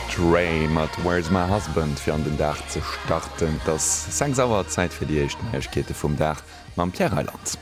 Train mat Where's My Husband fir an den Dag ze starten. Et ass 6 Auer, Zäit fir déi éischt Neiegkeete vum Dag mam Pierre Reyland.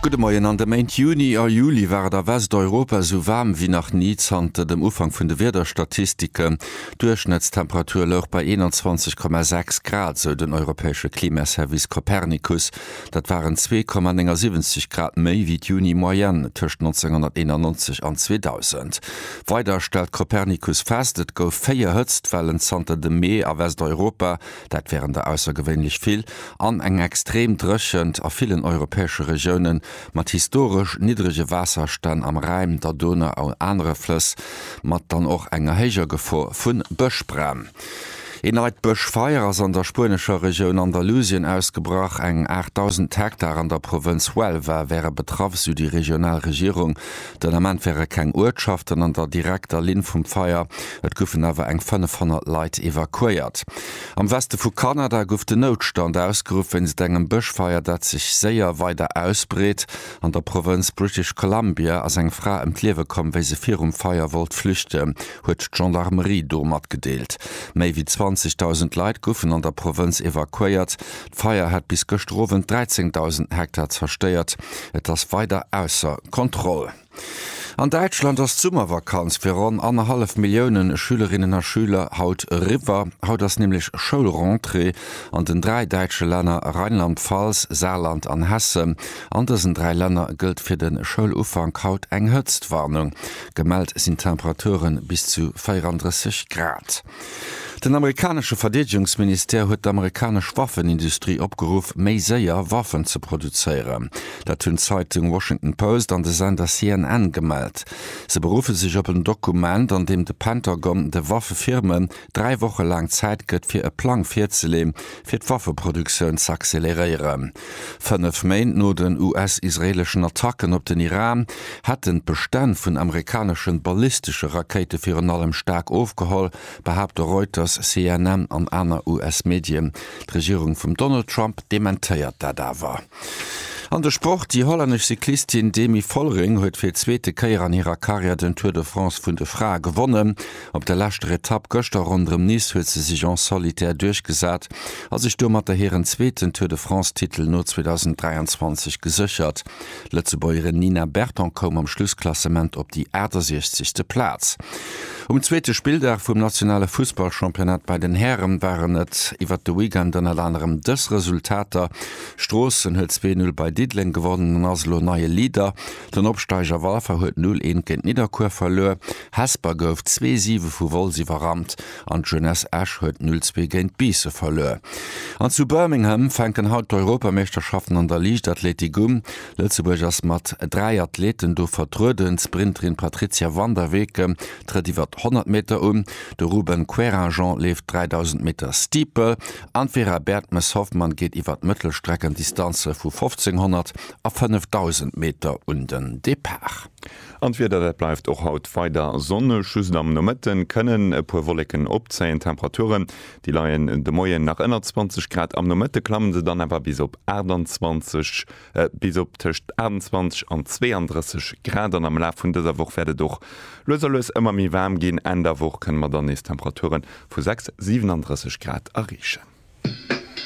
Gudde Moien, An de Méint Juni a Juli war et a Westeuropa esou waarm wéi nach ni zanter dem Ufank vun de Wiederstatistiken. D'Duerchschnëttstemperatur louch bei 21,6 Grad, sou den europäesche Klimaservice Copernicus. Dat waren 2,79 Grad méi wéi d'Juni-Moyenne tëscht 1991 an 2000. Weider stellt Copernicus fest, et gouf véier Hëtztwellen zanter dem Mee a Westeuropa, dat wären der aussergewéinlech vill, an eng extrem Dréchent a villen europäesche Regioune mat historesch niddrege Waasserstänn am Rhäin, der Donau an anere Flëss, mat dann och enger héijer Gefor vu Bëschbränn. Ee neit Bëschfeier ass an der spuenescher Regioun Andalusien ausgebrach. Eng 8.000 Hektar an der Provënz Huelva wäre betraff, sou déi regional Regierung. Den Ament wäre keng Uertschaften an der direkter Linn vum Feier, et goufen awer eng 500 Leit evakuéiert. Am Weste vu Kanada gouf den Noutstand ausgeruff wéinst engem Bëschfeier, dat sech séier weider ausbreet. An der Provënz British Columbia ass eng Fra ëm d'Liewe komm, wéi se virum Feier wollt flüchten. huet d'Gendarmerie do matgedeelt. Méi wéi 20.000 Leit goufen an der Provënz evakuéiert. D'Feier hat bis gëschter Owend 13.000 Hektar zerstéiert. Et ass weider ausser Kontroll. An Däitschland ass d'Summervakanz fir ronn annerhallef Millioune Schülerinnen a Schüler haut eriwwer. Haut ass nämlech Schoulrentrée an den dräi däitsche Länner Rheinland-Pfalz, Saarland an Hessen. An dësen dräi Länner gëllt fir de Schoulufank haut eng Hëtztwarnung. Gemellt sinn Temperature bis zu 34 Grad. Den amerikanesche Verdeedegungsministère huet d'amerikanesch Waffenindustrie opgeruff, méi séier Waffen ze produzéieren. Dat hunn d'Zeitung Washington Post an de Sender CNN gemellt. Se beruffe sech op en Dokument, an deem de Pentagon de Waffefirmen dräi Woche laang Zäit gëtt, fir e Plang virzeleeën, fir d'Waffeproduktioun z'acceleréieren. Fënnef Méint no den US-israeeleschen Attacken op den Iran hätten d'Bestänn vun amerikaneschen ballistesche Rakéite virun allem staark ofgeholl, behaapte Reuters, CNN an aner US-Medien. D'Regierung vum Donald Trump dementéiert dat awer. An de Sport, Déi hollännesch Cyclistin Demi Vollering huet fir d'zweete Kéier an hirer Karriär den Tour de France vun de Frae gewonnen. Op der leschter Etapp gëschter ronderëm Nice huet se sech en solitaire duerchgesat a sech domatter hiren zweeten Tour de France-Titel no 2023 geséchert. D'Lëtzebuergerin Nina Berton koum am Schlussklassement op déi 68. Plaz. Um zweete Spilldag vum nationale Fussballchampionnat bei den Häre waren et iwwert de Weekend ënnert anerem dës Resultater, Stroossen huet zwee Null bei Diddeleng gewonnen an ass elo neie Leader, den Opsteiger Walfer huet Null eent géint Nidderkuer verluer. Hesper gouf zwee Siwe vu Wolz iwwerrannt an d'Jeunesse Esch huet 0 zwee géint Biisse verluer. An zu Birmingham fänken haut d'Europameeschterschaften an der Liichtathletik un. Lëtzebuerg ass mat 3 Athleten do vertrueden. D'Sprinterin Patrizia van der Weken trëtt iwwer d'Honnert Meter un, de Ruben Querinjean leeft 3000 Meter Steeple an d'Vera Bertmes-Hoffmann geet iwwer d'Mëttelstreckendistanze vu 1500 a 5000 Meter un den Depart. An d'Wieder, dat bleift och haut weider sonneg, just am Nomëtte kënnen e puer Wolleken opzéien. D'Temperature, déi leien de Moien nach ënner 20 Grad, am Nomëtte klamme se dann awer bis op 28, bis op tëscht 28 an 32 Grad. An am Laf vun dëser Woch wäert et och lues a lues ëmmer méi waarm ginn, Enn der Woch kënne mer dann nees Temperature vu 6, 37 Grad erreechen.